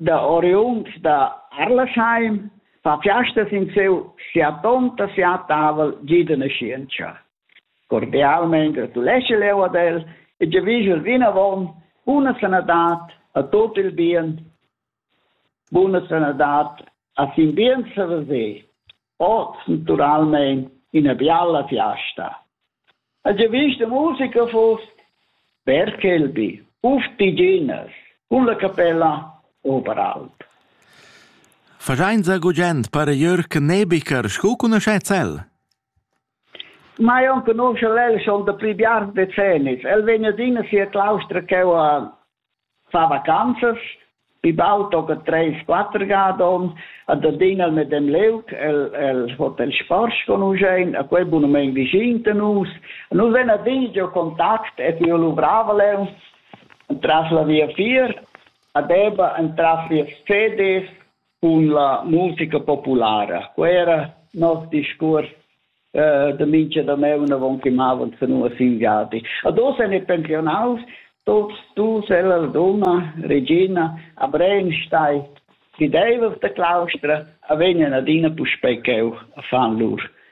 da oriunds da Arlasheim fa fiastas in siu siatonta siatavel gi de naschientscha. Cordialmein gratuleschel jeu ad el e giavischel vinavon buna sanadad a tot il bien. Buna sanadad a sin bien saver se. oz naturalmein ina bialla fiasta. Ha già vist la musica fuss? Berkelby, uf diginas, cun la capella Oberalp. Fagein sa gugent para Jörg Nebiker sco cunoscez el? Mai enconuscha el schon da pli biars decennis. El vegn adina sia claustra cheu a far vacanzas, pi baul tocca treis quatter ga ad onn, ad adina el medem liug, el, el hotel Sporsch conuschein, a quei bunamein vischin da nus. Nus vein adina giu contact e tiu luvravel eu entras la via fier, a Deba entras via Sedis, cun la musica populara. Quei era nos discuors eh, da mincha dameun avon che mavan senua sin viadi. Ad oz en i pensionaus, tots tu, Sella Laduna, Regina, a Brenstein, chi deivas da claustra, a vegnan adina puspei cheu a fan lur.